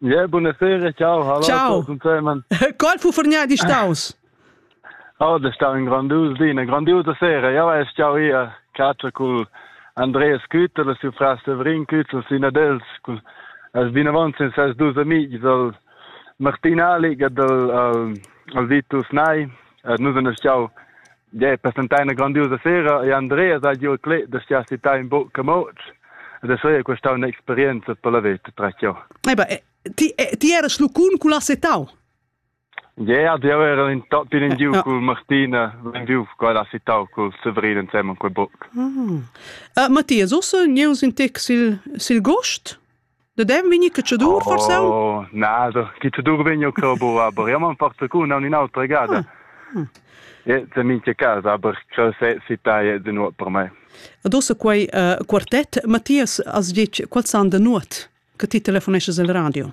Yeah, buonasera, ciao. Hallo, ciao. Qual fu fornia di staus? Oh, da stau in grandius di, una grandiusa sera. Ja weiß ciao io, caccia col Andreas Kütter, la sua fra Severin Kütter, sina dels, col as binavant sen ses dus amici dal Martin Alig e dal al, al Vitus Nai. Et nus en ciao Ja, per stentare una grandiosa sera e Andrea sa giù clé da sia città in buc camoc. E da sei questa un'esperienza per la vita tra io. Eba, ti ti era slucun cu la setau? Ja, die waren in tot binnen giu cu Martina wenn vi qua la citau cu Severin insieme con buc. Ah. Uh, Mattias, ossa neus in tec sil sil gost? Da dem vegni catschadur forsa? Oh, na, da catschadur vegni che bo aber ja man porta cu non in autra gada. E te minche casa, aber che se si tai de nuot per me. Adossa quei uh, quartett, Mattias, as dic, qual san de nuot che ti telefonesces al radio?